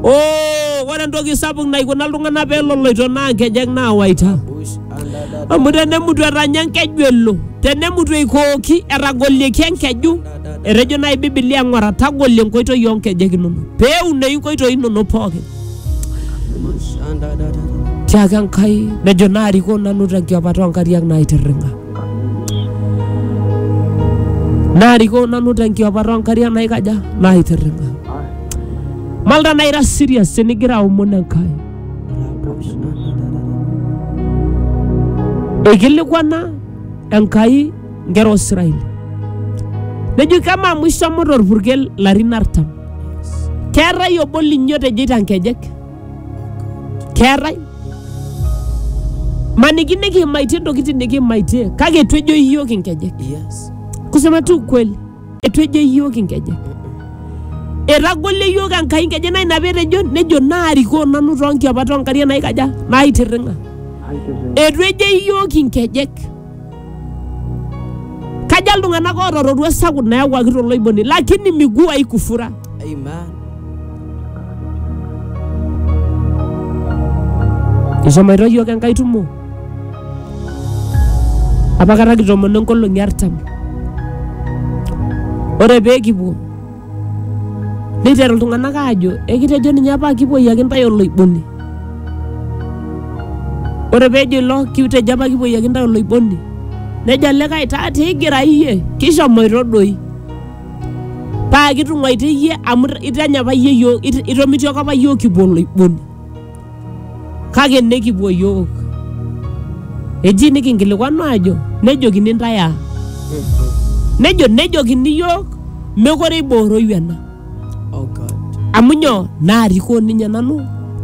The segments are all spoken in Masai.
Oh, ore entoki sapuk naikuna iltung'anak pee eloloito naa nkejek naawaita. Amu tenemutu etanya enkeju elo, tenemutu eikooki etagolieki enkeju, etejo naaji Biblia ng'ora tagolie enkoitoi oo nkejek inonok pee eunoyu inkoitoi inonok pookin. Tiaki Enkai nejo naarikoo nanu tenkiopata oo nkariak naitirring'a. Naarikoo nanu tenkiopata oo nkariak naikaja? Naitirring'a. Malta naa ira serious tenigira aomon Enkai. Eikilikwana Enkai nkera Osiraeli. Nejo kama amu ishomo torpurkel larin artam. Keetae obo linyi otejeita nkejek? Keetae? Maniki nikiimaitie ntokitin nikiimaitie kake etu ejo iyiook inkejek. Yes. Kusema tu ukweli. Eitu ejo iyiook inkejek. Etagolo iyiook Enkai inkejek naa ina petejo nejo naarikoo nanu too nkiapat oo nkariak naikaja naitirring'a. Eitu ejo iyiook inkejek. Kaja iltung'anak oota roruat sapuk nayawuaki toloiboni lakini miguu haikufura. Amen. Eshomoito iyiook Enkai tumo. apakata kitomono nkolong'i artam ore pee kipuo neiteru iltung'anak aajo ekitejo ninye apa kipuoyiaki intae oloiboni ore peejo ilo kitejo apa kipuoyiaki intae oloiboni nejo olikae taa tigira iyie kishomoito doi paa kitung'uaitie iyie amu itanya apa iyie yiok it- itomitioko apa iyiook kipuo oloiboni kake nekipuo yook. Eji nikinkilikuanu aajo nejokini intae aa? Nejo nejokini yook mekore eibooroyu ena. Oh God. Amu nyoo? Naarikoo ninye nanu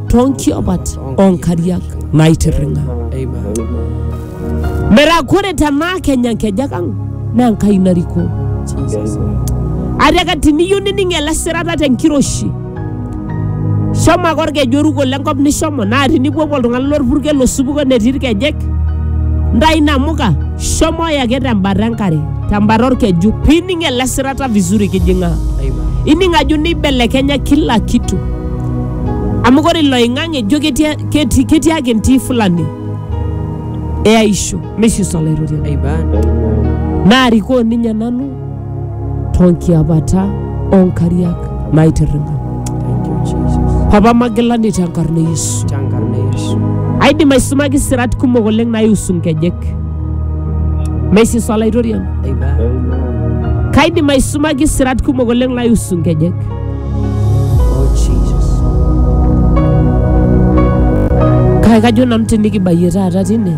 too nkiopat oo nkariak naitirring'a. Amen. Metaa kore tenaa kenya nkejek ang' naa Enkai narikoo. Jesus. Atiaka tiniyeu nining' ele sirata te nkiroshi Shomo ake olkeju oruko lenkop nishomo, naa tinipuopuo iltung'ana lolpurkel losupuko netii ilkejek, ntayu inamuka, shomoyu ake tembata enkare, tembata olkeju, pining ele sirata vizuri kijing'aa. Ining ajo neibelekenya kila kitu. Amu ore iloing'ang'e ijo ketii ketii ketii ake entii fulani eaisho, meshiso Olaitoriani. Amen. Naarikoo ninye nanu tonkiapata onkariak naitirring'a Thank you, Jesus. papa magilani tenkarna e yesu Tenkarna e Yesu. aidim aisumaki sirat kumok oleng naiusu nkejek meisisa olaitoriani Amen. kaidim aisumaki sirat kumok oleng naiusu nkejek Oh, Jesus. kake kajo nanu tinikibayie taata tine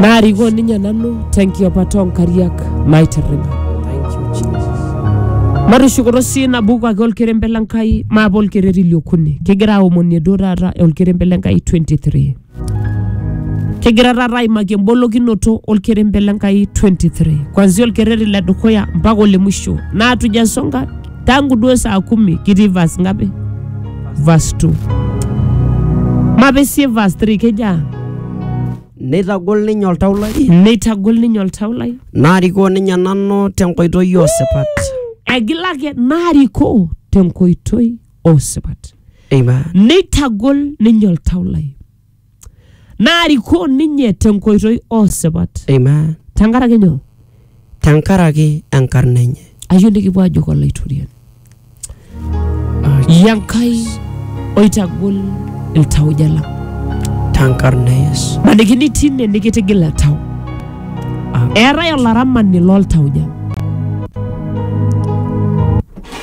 naarikoo ninye nanu tenkiopata oonkariak naitirring'a Thank you, Jesus. matushukoto sii nabuku ake olkerembe le Nkai maape olkereri liokuni kigira aomonie duo taata olkerembe le Nkai 23 kigira taata aimaki embolokinoto olkerembe le Nkai 23 kwanzia olkereri le dukuya mpaka ole mwisho naatuja nsonga tangu duo saa kumi kitii vas ngapi vas 2 mapesie vas 3 kejaa neitagol ninye oltau lai neitagol ninye oltau lai naarikoo ninye nanu tenkoitoi osipat egila ake naarikoo tenkoitoi osipat amen neitagol ninye oltau lai naarikoo ninye tenkoitoi oosipat Amen. tenkaraki nyoo Tenkaraki enkarna enye. ayieu nikipuo ajoki olaitoriani yie enkai oitagol iltauja lang Tenkarna e Yesu. maniki nitii ine nikitigil oltau eetae olaramani loltauja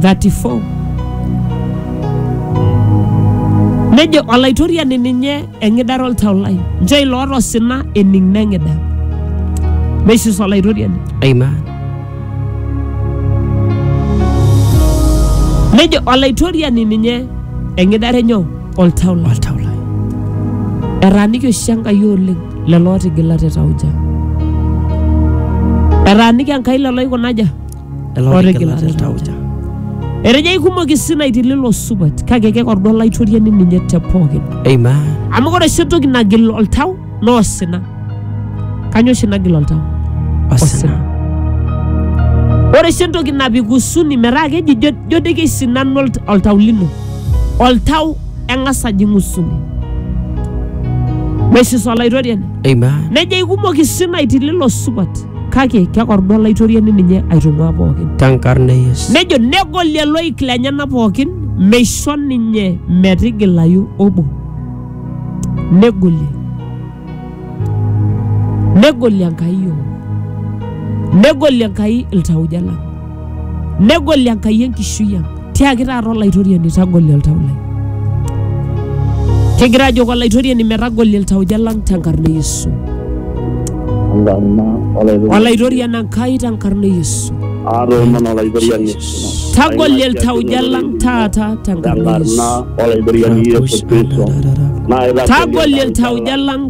34 nejo olaitoriani ninye eng'idare oltau lai nchoo ilo oota osina ening neng'ida meisus olaitoriani Amen. nejo olaitoriani ninye eng'idare nyoo oltau lai Oltau lai. etaaniki oshi enkai oleng lelo ootigila te tauja etaaniki enkai lelo oikunaja otigilate iltauja. Etejo aikumok isinaiti lilo supat kake kekordu olaitoriani ninye te pookin. Amen. Amu ore oshi entoki nagil oltau naa osina. Kanyoo oshi nagil oltau? Osina. Ore oshi entoki napik husuni metaa keji jo jo doi keisinanu olt- oltau lino. Oltau eng'as ajing husuni. Meshiso olaitoriani. Amen. Nejo aikumok isinaiti lilo supat. kake kekordu olaitoriani ninye aitung'uaa pookin Tenkarna e Yesu. nejo negolie loik lenyena pookin meisho ninye metigilayu obo negolie negolie enkai yiok negolie enkai iltauja lang Negoli Enkai enkishui ang. Tiaki taata Olaitoriani tagoli oltau lai. Kigira ajoki Olaitoriani metagoli iltauja lang tenkarna e Yesu. Enkarna olaitoriani. Olaitoriani Enkai tenkarna e Yesu. Aatoomon olaitoriani. Tagoli iltauja lang taata tenkarna e Yesu. Tenkarna olaitoriani Yesu Kristo. Naa itagoli Tagoli iltauja lang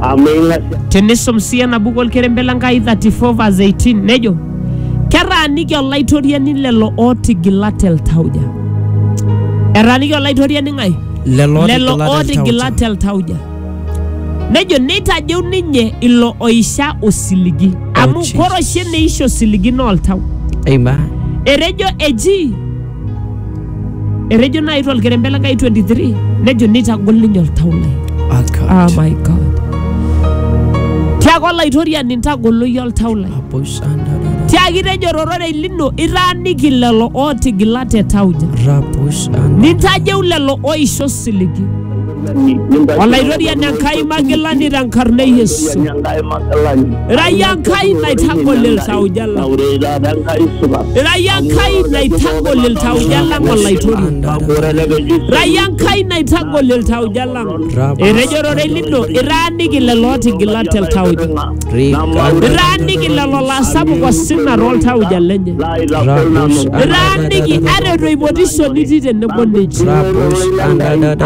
amu ing'asia Tenisum sii ena buku olkerembe le Nkai 34 verse 18 nejo ketaaniki olaitoriani lelo ootigila te ltauja. Etaaniki olaitoriani ng'ae? Lelo lelo ootigila ootigila te te ltauja. Nejo neitajeu ninye ilo oisha osiligi amu Jesus. kore oshi eneisha osiligi naa oltau. Amen. Etejo eji Etejo nai tolkerembe le Nkai 23 nejo nitagol ninye oltau lai. Akat. Ah my God. Tiaku olaitoriani ntagolo iyie oltau lai. Raposhandara. Tiaki tejo rororei lino itaaniki lelo ootigila te tauja. Raposhandara. Nintajeu lelo oisho siligi. Olaitoriani Enkai magilani tenkarna e Yesu. Enkai magilani. Irayia Enkai naitagol iltauja lang. Ore taata Enkai supat. Irayia Enkai naitagol iltauja lang Olaitoriani. Ore elekeju. Irayia Enkai naitagol iltauja lang. Etejo ororei lino itaaniki lelo ootigila te ltauja. Iraaniki lelo laasapuk osina tooltauja lenye. Iraaniki aretu eipotisho nitii tenebo ninche.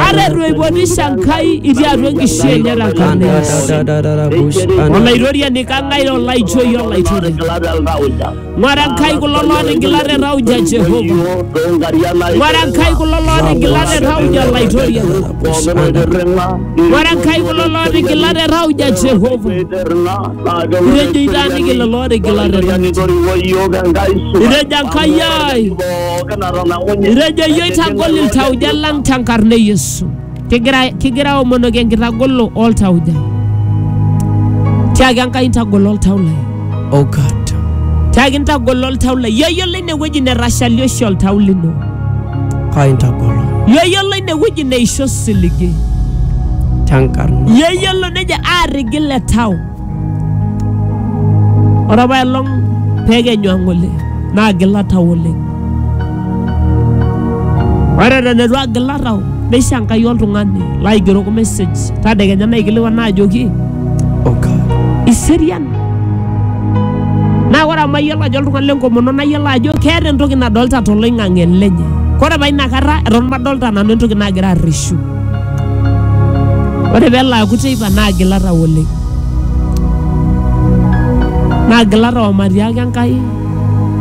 Aretu eipotisho Enkai itii atua enkishui enye tenkarna Yesu. Olaitoriani kang'ae olaijoi olaitore. Ng'wara Nkai kulo lootigila te tauja e Jehova. Ng'wara Nkai kulo lootigila te tauja Laitoria. Ng'wara Nkai kulo lootigila te tauja Jehova. Itejo itaaniki lelo ootigila te tauja. Itejo Enkai ai. Itejo iyie oitagol iltauja lang tenkarna e Yesu. Kigira, kigira aomonoki enkitagolo oltauja. Tiaki Enkai ntagolo oltau lai. Oh God. Tiaki ntagolo oltau lai. Yoyiolo ine wueji netashali oshi oltau lino. Kai ntagolo. Yoyiolo ine wueji neisho osiligi. Tenkarna. Yoyiolo nejo aarrigil le tau. Ore apa elong pekenyu ang oleng naa agila tau oleng. Ore eton eitu agila tau neisho Enkai oltung'ani laigeroko message tadekenya naikilikuan ajoki iserian. Naa ore amu ayiolo ajo oltung'ani lenkomono nayiolo ajo keeta entoki nadolita toloing'ang'e lenye. Ore apa inakata eton madolita nanu entoki nagira arreshu Ore pee elo aaku teipa naa agila tau oleng. Naa agila tau omatiaki Enkai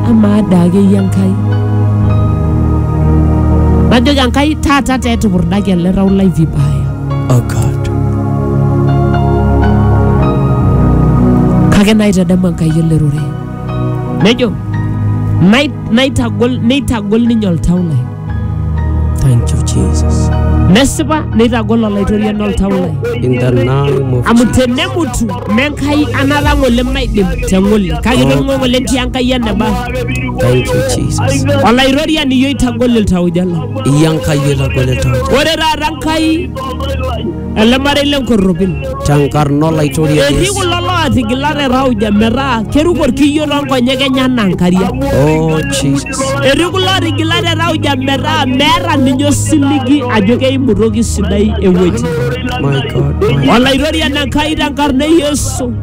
amaa daa akeyie Enkai. Najoki Enkai taata taa etupurdaki ele tau lai vibaya. Oh God. Kake naitadamu Enkai ele rorei. Nejo naitagol neitagol ninye oltau lai. Thank you, Jesus. nesipa neitagol olaitoriani oltau lai In the name of amu tenemutu menkai anata ng'ole maidim teng'ole kake tong'o ng'ole ntii enkai eneba Thank you, Jesus. olaitoriani iyio itagol iltauja lang Iyankai etagolita. ore taata nkai ele marei le nkorropil. Tenkarna olaitoriani Etii Yesu. kulo lootigila te tauja metaa keruko orkiyio toonkonyek enye anaa nkariak. Oh, Jesus. Etii kulo ootigila te tauja metaa meeta ninye osiligi ajo keimu toki sidai ewueji. My God. My Olaitoriani Enkai tenkarna e Yesu.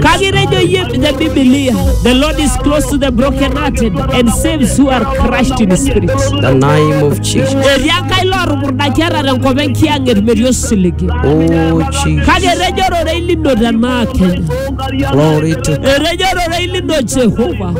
Kake etejo iyie te Biblia, the Lord is close to the brokenhearted and saves who are crushed in spirit. The name of Jesus. Etii Enkai lootupurdaki ata tenkop enkiyang'et metii osiligi. Oh Jesus. Kake etejo ororei lino tenaa Kenya. Glory to Etejo ororei lino Jehova.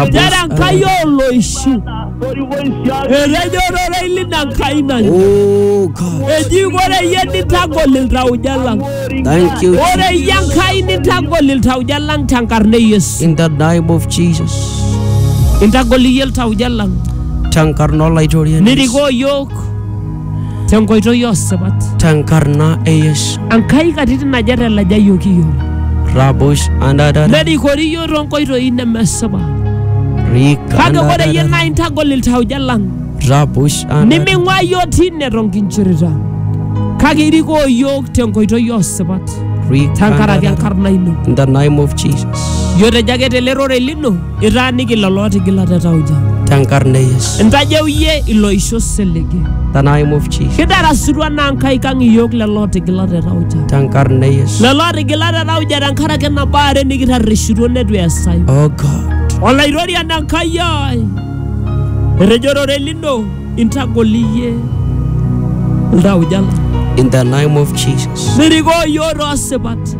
Nchere Enkai Rabus. ooloishu. Etejo ororei lina Nkai naleng. Oh God. Eji ore iyie nitagol iltauja lang. Thank you. Ore iyie Enkai nitagol iltauja lang tenkarna e Yesu. In the name of Jesus. Intagol iyie iltauja lang. Tenkarna olaitoriani. Nirikoo iyiook tenkoitoi osipat tenkarna e Yesu. Enkai katitin aja telajayioki iyiook Rabush andadada nerikori iyiook toonkoitoi nemesipa kake ore iyie naa rikandadada intagol iltauja lang Rabush andadada niming'ua iyiook tine tonkinchirita kake irikoo iyiook tenkoitoi osipat tenkaraki rikandadada enkarna ino In the name of Jesus. iyiotejo ake tele rorei lino Itaaniki lelo ootigila te tauja. tenkarna e Yesu. Intajeu iyie iloisho oselege. The name of Jesus. Kidarasutua naa nkaik ang iyiook lelo ootigila te tauja. Tenkarna e Yesu. Lelo ootigila te tauja tenkaraki nabo are nikitarrishutuo neitu eesayu. Oh God. Olaitoriani Enkai ai, etejo orore lino intagol iyie iltauja lang. In the name of Jesus. Nirikoo iyiook toosipat.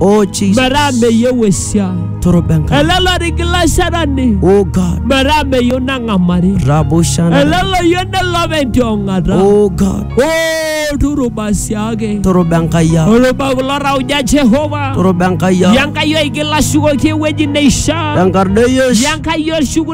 Oh Jesus. metaa meyieu esiai Toroba Enkai. ele lorigilashadani Oh God. metaa meyieu nang'amari Rabo Shana. ele loyieu nelop entiong'ata Oh God. o turuba siake Toroba Enkai ang. oluba kulo rauja jehova Toroba Enkai ang. yankayo aigilashukoki ewueji neishaa Enkarna e Yesu. yankayo shuku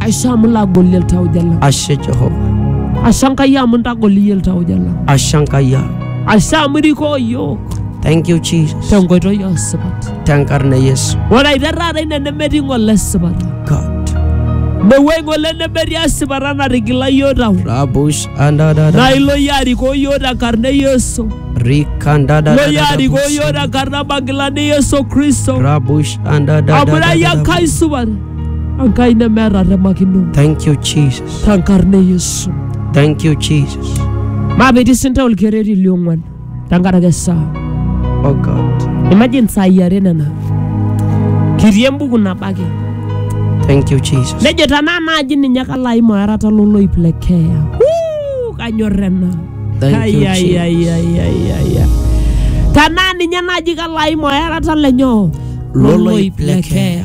Aisho amu lagoli iltauja lang. ashe jehova Ashe Enkai amu intagoli iyie iltauja lang. ashe enkai ang Ashe amu irikoo iyiook thank you jesus tenkoitoi oo sipat. tenkarna e yesu Ore aiteru taata ine nemetii ng'ole esipata. god Mewuei ng'ole nemetii esipata natigila iyiook tau. rabus Naa andadada ilo iyie arikoo iyiook tenkarna e Yesu. Ilo iyie arikoo iyiook rikandadadadabus tenkarna magilani e Yesu Kristo. rabus Amu ira iyie andadadadabus Enkai supat. Enkai nemeeta remakino. Thank you, Jesus. Tenkarna e Yesu. Thank you, Jesus. Maapiti sinta olkereri liong'uan tenkaraki esaa. Oh God. Imagine saai are nena. Kitii embuku nabo ake. Thank you, Jesus. Nejo tenaa naaji ninye kalo aim oerata loloip le keeya. Wuu, Kanyorr ena. Thank you, Ai, ai, Jesus. ai, ai, ai, ai, ai. Tenaa ninye naaji kalo aim oerata le nyoo? Loloip le keeya.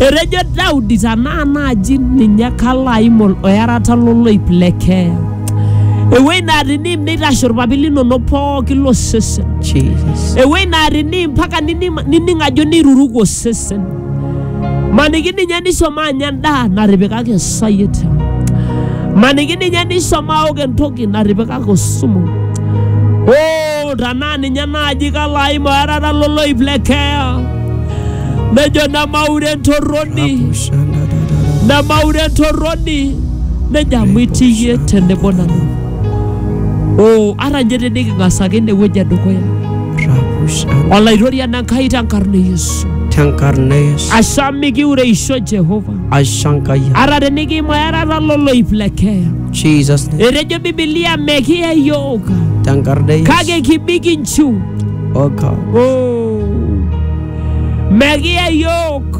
Etejo Daudi, tenaa naaji ninye kalo aim ol- oerata loloip le keeya. Ewueji naa teniim neitashe olpapit linono pooki losesen. Jesus. Ewueji naa teniim mpaka nining nining ajo neiruruko osesen. Maniki ninye nishomo anya endaa natipikaki esayiet. Maniki ninye nishomo aok entoki natipikaki osumu. Oo, tenaa ninye naaji kalo aim oerata loloip le keeya. nejo nemaure entorroni nemaure entorroni nejo amu itii iyie tenebo nanu o ata ninye teniking'as ake inewueji edukuya olaitoriani enkai tenkarna e yesu tenkarna yesu asha mikiureisho jehova ashankai ata tenikiimaerata loloip le keeya jesus name. etejo bibilia mekiya yiok tenkarna yesu kake kibik inchiu oga oh. megiya yook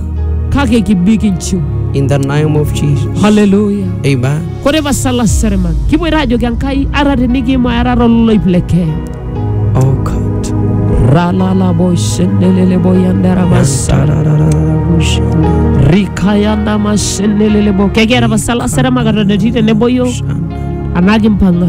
kake kibik inchiu in the name of Jesus. haleluya Amen. kore pasala serema kiboito ajoki enkai ara tinikiima era tololoip le kenya Oh God. ralalaboshendeleleboyandarabasa rikayandamashendelelebo kekiata pasala serema katon etii teneboyo anaa kimpang'a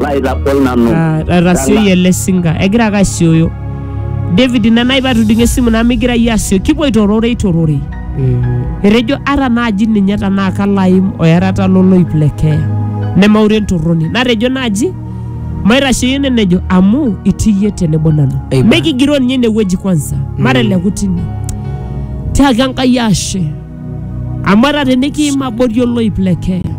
laitagol nanu. Ah, etasioyie ele singa egira ake asioyo david ina nai patudung'o esimu naa migira iyie asioyo kipuoito rorei tororei etejo ata naaji ninye tanaa kalaim oyarata loloip le keeya nemaure entorroni natejo naaji maitasheyie ene nejo amu itii iyie tenebo nanu Amen. mikigiroo ninye inewueji kwanza mateleku tine tiaki enkai ashe Amu ata tenikiim abori oloip le keeya,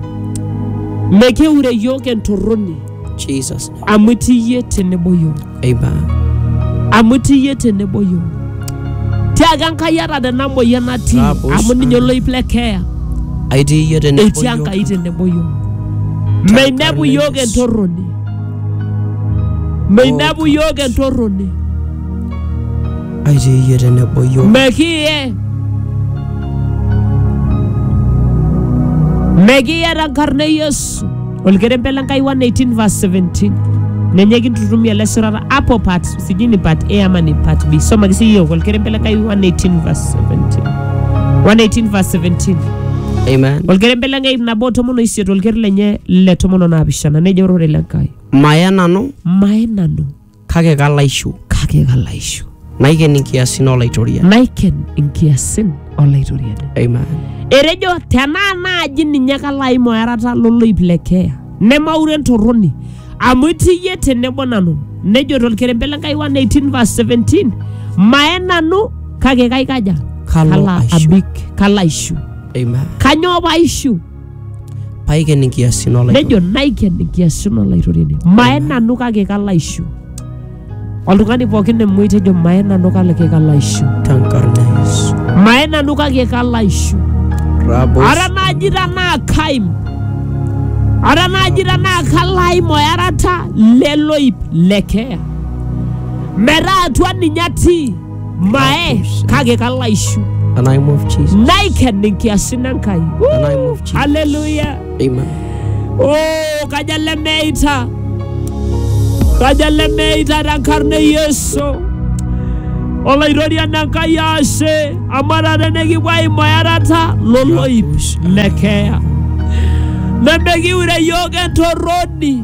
mekeure iyiook entorroni Jesus. amu itii iyie tenebo iyiook. Amen. amu itii iyie tenebo iyiook tiaaka Enkai ata tena moyian natii Tapos. amu ninye oloip le keeya Aitii iyie tenebo etii iyiook. Enkai tenebo iyiook meinepu iyiook Yesu. entorroni meinepu iyiook entorroni aitaa iyie tenebo iyiook. Mekiye. Mekiye tenkarna e Yesu. Olkerembe le Nkai 118 verse 17. Ninye kintutumia ele shorata hapo part sijui ni part A ama ni part B. Soma kisi hiyo Olkerembe le Nkai 118 verse 17. 118 verse 17. Amen. Olkerembe le Nkai nabo tomon oisiet olker lenye le tomon onaapishana nejo ororei le Nkai. Maya nanu Maye nanu kake kalaishu kake kalaishu naiken inkiasin olaitoria naiken inkiasin olaitoriani amen etejo tenaa naaji ninye kalo aim oerata loloip le keeya nemaure entorroni amu itii iyie tenebo nanu nejo tolkerembe le Nkai 118 verse 17 mae nanu kake kaikaja Kalo aishu. abik kalo aishu amen kanyoo paishu paiken inkiasin nejo olaitoriani naiken nkiasin olaitoriani maye nanu kake kalo aishu oltung'ani pookin emoi tejo maye nanu kake kalo aishu tenkarna e Yesu. maye nanu kake kalo aishu Rabos ara naaji tanaa kaim ara naaji tanaa kalo aim oyarata leloip lekeya metaa atua ninye atii mae kake kalo aishu The name of Jesus. naiken inkiasin enkai The name of Jesus. haleluya Amen. oh, kaja lemeita kaja lemeita tenkarna e yesu olaitoriani enkai ashe amu taata nikipuo aimu earata loloip lekeya nemekiure yiok entorroni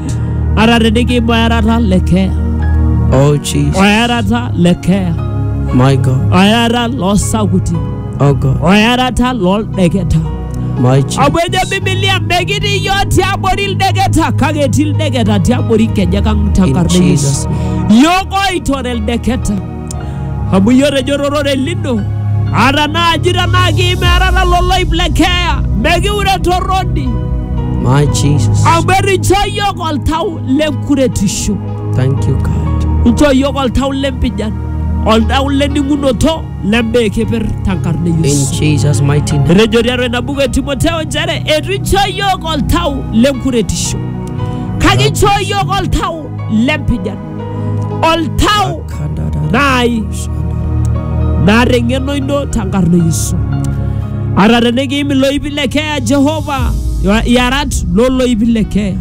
Ara teniki boyarata le keeya. Oh Jesus. Oyarata le keeya. My God. Oyarata loo sakuti. Oh God. Oyarata loo ldeketa. My Jesus. Amu ejo Biblia mekitii iyiook tiabori ildeketa kake etii ildeketa tiabori nkejek ang In tenkarna e Yesus. Jesus. Iyiook oitore ildeketa. Amu iyio otejo torore lino, ata naaji tenaa kiimerara loloip le keeya, mekiure torroni, My Jesus. amu etinchoo iyiook oltau le nkuretisho, Thank you, God. inchoo iyiook oltau le mpijan, oltau le ning'unoto le mbaa e keper tenkarna e In Yesu. Jesus' mighty name. Etejo tiatua ina buku e Timoteo nchere eitu inchoo iyiook oltau le nkuretisho, kake inchoo iyiook oltau le mpijan. oltau naai naata eng'eno ino tenkarna e Yesu. Ata tenikiim iloipi le keeya Jehova, iarat looloipi le keeya.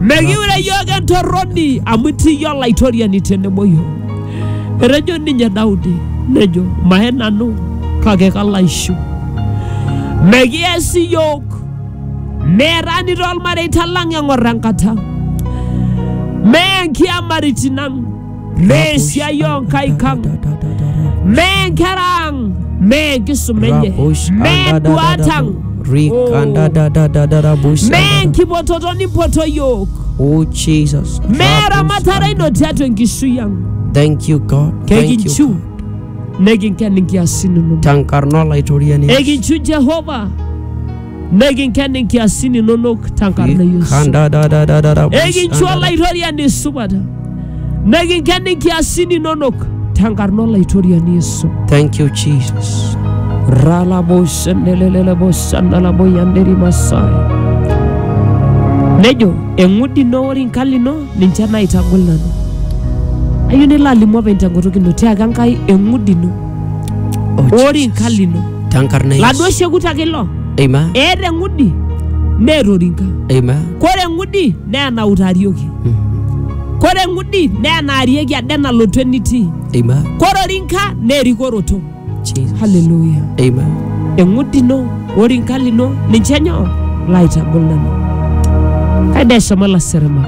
Mekiure iyiook entorroni amu itii iyie olaitoriani tenebo iyiook. Etejo ninye Daudi nejo maye nanu kake kalo aishiu. Mekias iyiook Meerani toolmareita lang eng'or enkata. Mee nkiamaritin ang. Mee esiai oo nkaik ang. Mee nkera ang. Mee enkisuma enye. Rabush Mee anda da da nduat da ang. bu- Rikanda da da da da rabush Mee anda da. enkipototo nimpoto iyiook. Oh Jesus. Mee Rabush eramatare anda. ino tiatua enkishui ang. Thank you God. Thank you. Kekinchu God. nekinken inkiasin inonok. Tankarna olaitoriani. Ekinchu Jehova Nikinken inkiasin inonok tenkarna e Yesu. Kanda da da da da da. Ekincho olaitoriani supat. Nikinken inkiasin inonok tenkarna olaitoriani Yesu. Thank you Jesus. Ralabosenelelelebosanalaboyanderimasa. Nejo eng'udi ino ore inkali ino ninche naitagol nanu. Ayieu nilo alimu openy tenkutuk ino tiaaka Enkai eng'udi ino Oh, ore Jesus. nka lino Tenkarna e laduo Yesu. shekut ake ilo Amen. eeta eng'udi neeta orinka Amen. kore eng'udi naa enautarieki Mm. kore eng'udi naa enaarieki ade nalotu enitii Amen. kore orinka naa erikoroto Jesus. haleluya Amen. eng'udi ino orinka lino ninche nyoo laitagol nanu kaida eshomo laseremak